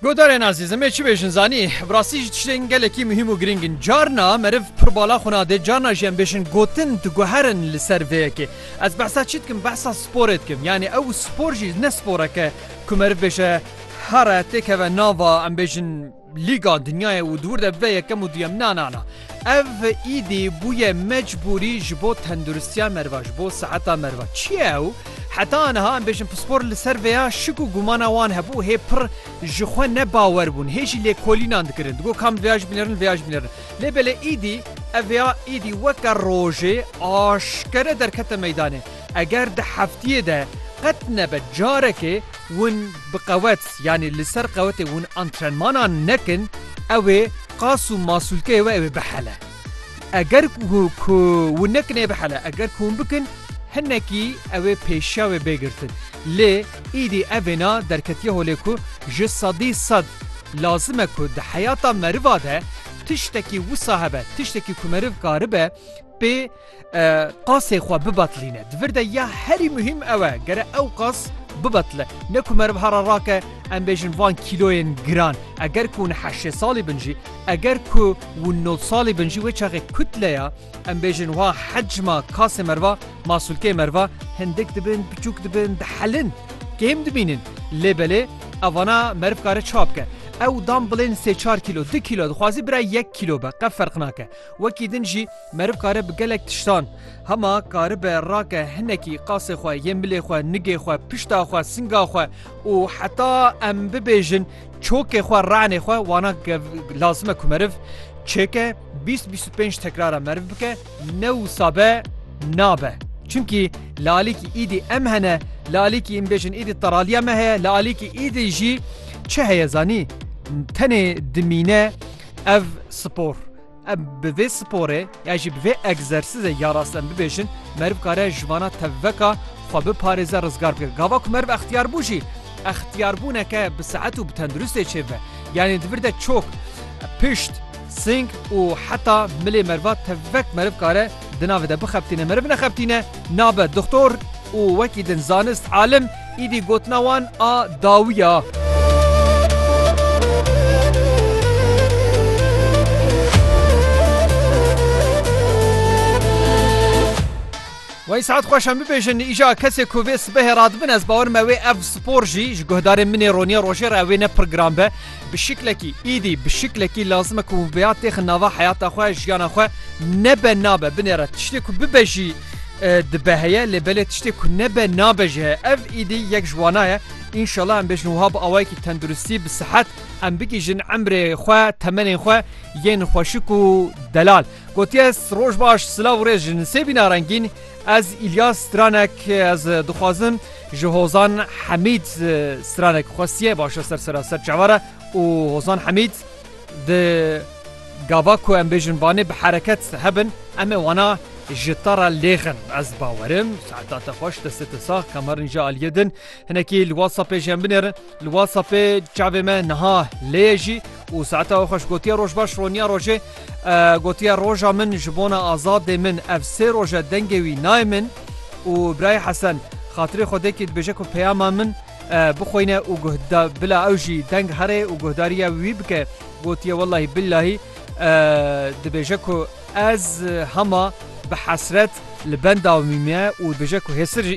Godarên azîz em ê çi bêjin zanî bi rastî jî tiştên gelekî muhîm û girîng in. Carna meriv pir bala xwe nade, carna jî em bêjin gotin diguherin li ser vê yekê. Ez behsa çi dikim behsa sporê dikim. Yanî ew spor jî ne sporeke ku meriv bêje here têkeve nava em bêjin Lîga Dinyayê û di wir de bibe yekem û duyem na na na. Ev îdî bûye mecbûrî ji bo tenduristiya meriva, ji bo seheta meriva. Çi ye ew? Heta aniha em bêjin pispor li ser vêya şik û gumana wan hebû, hê pir ji xwe ne bawer bûn, hê jî lêkolînan dikirin, digot ka min vêya ji bînerin, vêya ji bînerin. Lê belê îdî ev vêya îdî weke rojê aşkere derkete meydanê. Eger di heftiyê de qet nebe carekê win bi qewet yanî li ser qewetê win antrenmanan nekin ew ê qas û masûlkeyê we ew ê bihele. Eger ku win nekin ê bihele eger ku win bikin hinekî ew ê pêşiya wê bê girtin. Lê îdî ev êna derketiye holê ku ji sedî sed lazim e ku di heyata meriva de tiştekî wisa hebe, tiştekî ku meriv karibe, pê qasê xwe bibetlîne. Di vir de ya herî muhîm ew e gere ew qas bibetle. Ne ku meriv hera rake em bêjin van kîloyên giran. Eger ku hûn heşê salî bin jî, eger ku hûn nod salî bin jî wê çaxê kutleya em bêjin wa hecma kasê meriva, masûlkeyê meriva hindik dibin, biçûk dibin, dihelin, kêm dimînin. Lê belê ev vana meriv kare çawa bike? Ew dan bilên sê çar kîlo, du kîlo dixwazî bira yek kîlo be qe ferq nake. Wekî din jî meriv kare bi gelek tiştan hema karibe rake hinekî qasê xwe yên milê xwe nigê xwe pişta xwe singa xwe û heta em bibêjin çokê xwe re'nê xwe wana lazim e ku meriv çêke bîst bîst û pênc tekrara meriv bike ne wisa be nabe. Çimkî li alîkî îdî em hene li alîkî em bêjin îdî teraliya me heye li alîkî îdî jî çi heye zanî tenê dimîne Ev spor. Em bi vê sporê ya jî bi vê egzersîzê ya rast em bibêjin meriv kare ji vana tevveka xwe biparêze rizgar bike. Gava ku meriv extiyar bû jî extiyarbûneke bi sehet û bi tenduristê çêbibe. Yanê di vir de çok, pişt, sing û heta milê meriva tevvek meriv kare Di navê de bixebitîne meriv nexebitîne nabe dixtor û wekî din zanist alim îdî gotina wan a dawî ya. Wey saet xweş em bibêjin îja kesê ku vê sibehê radibin ez bawer me wê ev spor jî ji guhdarên min ê ronî rojê re ew ê ne pirgiran be Bi şiklekî, îdî bi şiklekî lazim e ku vêya têxin nava heyata xwe, jiyana xwe. Nebe nabe, binêre. Tiştê ku bibe jî dibe heye lê belê tiştê ku nebe nabe jî heye. Ev îdî yek ji wana ye. Înşela em bêjin wiha bi awayekî tenduristî, bi sihet em bigihîjin emrê xwe, temenên xwe yên xweşik û delal. Gotiye, Roj baş, silav û rêz ji nisêbîna rengîn. Ez Îlyas Stranek ez dixwazim ji Hozan Hemîd Stranek xwestiye başe ser sera ser çavara û Hozan Hemîd di gava ku em bêjin banê bi hereket hebin em ê wana ji tara lêxin ez bawerim saeta te xweş destê te sax kamerin ji aliyê din hinekî li WhatsAppê ji em binêrin Li WhatsAppê çavê me niha lê ye jî û saeta we xweş gotiye roj baş roniya rojê gotiye roja min ji bona azadê min ev sê roj e dengê wî nayê min û birayê Hesen xatirê Xwedêkî dibêje ku peyama min bixweyne û guhda bila ew jî deng herê û guhdarîya wî bike gotiye wellahî billahî dibêje ku ez hema bi hesret li benda wî me û dibêje ku hêsir jî